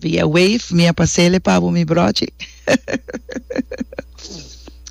Via wave mi a pasele pa bo mi brochi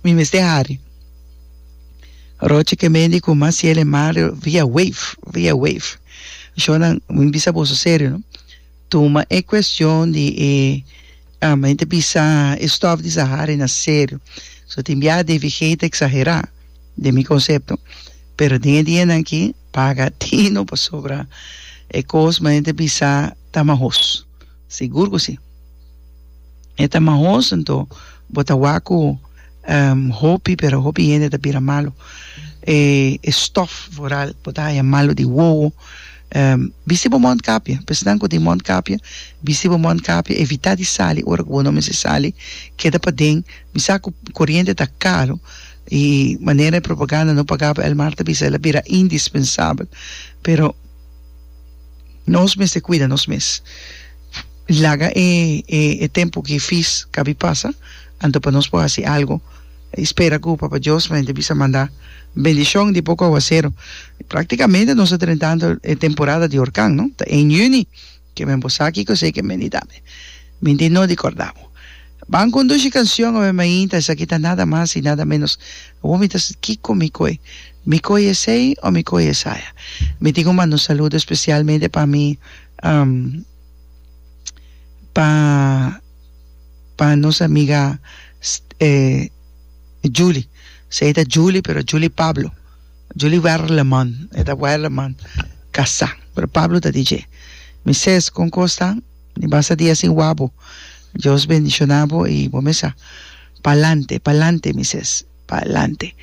mi mester hari rochi ke mendi ku mas ciele mario via wave via wave shonnan mi bisa boso serio no tuma e cuestion di e ah mi ta bisa e stof di sahari na serio so tin bia devigheid exagera den mi concepto pero den e dianan aki Paga tino pasobra e kos ma hende bisa ta mahos. Sigur ku si. E ta mahos nto bo ta wak ku hopi pero hopi hende ta bira malu. E stòf vooral bo ta haña malu di wowo. Bisti bo mòntkapje. P'esnan ku tin mòntkapje bisti bo mòntkapje. Evitá di sali ora ku bo no mester sali. Keda paden. Misa ku koriente ta karu. E manera e propaganda no pagaba el mar ta bisa el a bira indispensabel pero nos mester cuida nos mes laga e e tempo gifis cabi pasa anto pa nos por haci algo y spera cu Papa Dios mente bisa manda bendicion di poco aguacero practicamente nos ta drentando e temporada di orkan no ta en juni Ke men bo sa ki kos ei ke men di dame? Min tin no di korda bo. Ban kondushi kanshon obe mainta, esaki ta nada mas i nada ménos. Awor mi ta siti kiko mi koi. Mi koi esei o mi koi esaya? Mi tin ku manda un saludo spesialmente pa mi pa pa nos amiga Julie. Esei ta Julie pero Julie Pablo. Julie Werleman, e ta Werleman, kasá, pero Pablo ta di dje, Mi ses, kon kos ta? Mi basta dia sin wak bo. Dios bendishoná bo i bo mesa. Pa'lante, pa'lante, mi ses, pa'lante.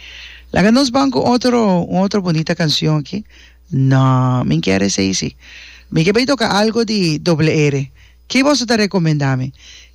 Laga nos ban ku otro, un otro bunita kansion aki. No, mi n'ker esei si. Mi ke bai toka algu di Doble R. Ki boso ta rekomendá mi?